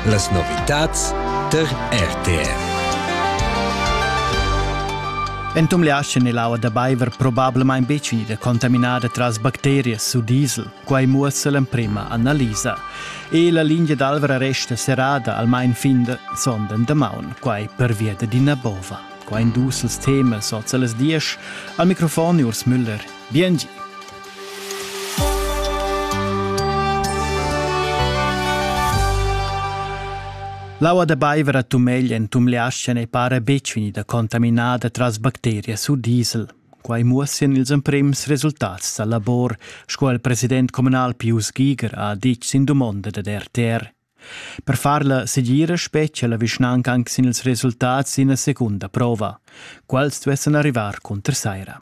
Las novitads tar RTR. Entum le aschen è l'aua da baiver probablamain betg ida contaminada tras bacterias u diesel. Quai muossa l'emprima analisa. E la lingia d'Alvra resta serrada almain fin de sonden damaun, quai pervia d'ina bova. Quai en dus temas oz a las diesch. Al microfon Urs Müller. Biengi. L'aua da baiver a Tumegl en Tumleascha ei para betg vegnida contaminada tras bacterias u diesel. Quai muossian ils emprims resultats dal labor, sco il president communal Pius Giger ha ditg sin dumonda dad RTR. Per far la segira spetgia la vischnanca anc sin ils resultats d'ina secunda prova. Quals duessan arrivar cunter saira.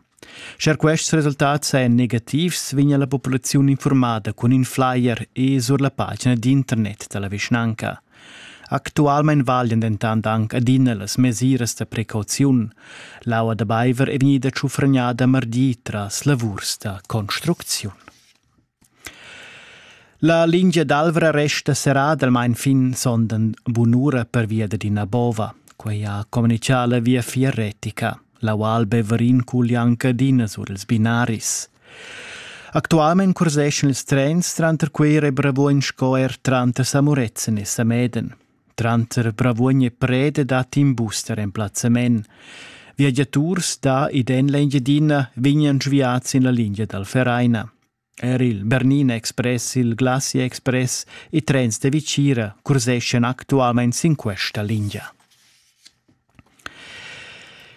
Scher quests resultats sajan negativs, vegnia la populaziun informada cun in flyer e sur la pagina d'internet da la vischnanca. Actualmein valian dentant anc adina las mesiras da precauziun. L'aua da baiver è vegnida tschufragnada mardi tras lavurs da construcziun. La lingia d'Alvra resta serradalmain fin sonden bunura pervia d'ina bova. Quei ha communichà la viafier retica. La Val Beverin cuglia anche adina sur ils binaris. Actualmein curseschan ils trens tranter quei Rebrevuon sco er tranter Samurezzen e Sameden. Tranter Bravuogn e Preda dat in bus da remplazzament. Viagiaturs da ed en l'Engiadina vegnan sviads sin la lingia dal Vereina. Er il Bernina Express, il Glacia Express e trens da Vicira curseschan actualmain sin questa lingia.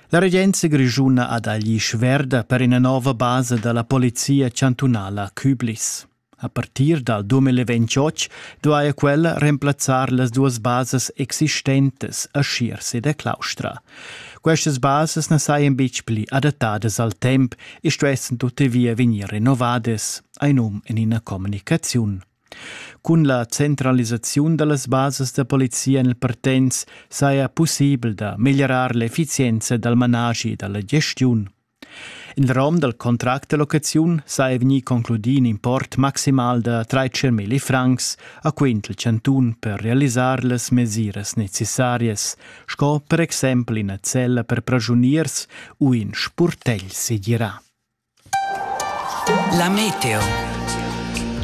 La regenza grischuna ha dagli sverda per ina nova basa dalla polizia chantunala Küblis. A partir dal 2028 duaja quella remplazzar las duas basas existentas a Schierse ed a Claustra. Questas basas na sajan betg pli adattadas al temp e stuessan tuttavia vegnir renovadas, ein um en ina communicaziun. Cun la centralisaziun da las basas da polizia en il Partenz saja pussibel da meglierar l'effizienza dal managi da la gestiun. In rom dal contract da locaziun sa è vegnì concludì in import maximal da 13.000 francs a quint il chantun per realisar las mesiras necessarias, sco per exempel ina cella per pragiuniers u in spurtegl segirà. La meteo.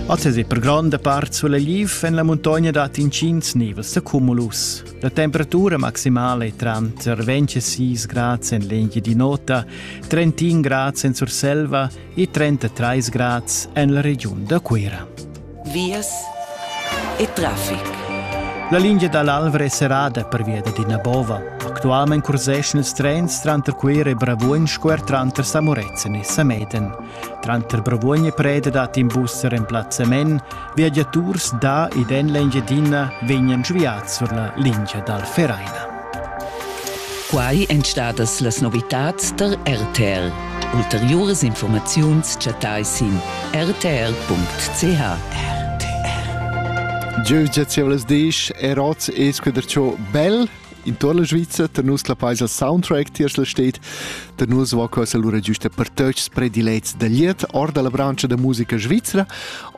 Oz è per gronda part sulla liv en la muntogna dat intgins nivels da cumulus. La temperatura maximale è tranter 26 grads en l'Engia di Nota, 31 grads en Surselva e 33 grads en la regiun da Cuira. Vias e traffic. La linea dall'Alvra è serrada per via di Nabova. Actualmente curseschan ils trens tranter Cuira e Bravuogn square tranter Samorezzen e Sameden. Tranter Bravuogn e Preda dat in bus remplazzament, viagiaturs da ed en l'Engiadina vegnan sviads sur la lingia dal Vereina. Quai èn stadas las novitads tar RTL. Ulteriuras informaziuns chattai sin rtl.ch. Jeu giazievlas disch er oz es quader ciò bel in tor la Sviza, da nus la paisa soundtrack tiers la stet, da nus va quella lura giusta per tøts predilets da liet or dalla brancha da musica svizzera.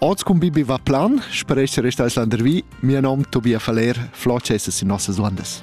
Oz cum Bibi va plan, spero essere stai landervi, mio nom Tobias Faller, floce essas in nossas landes.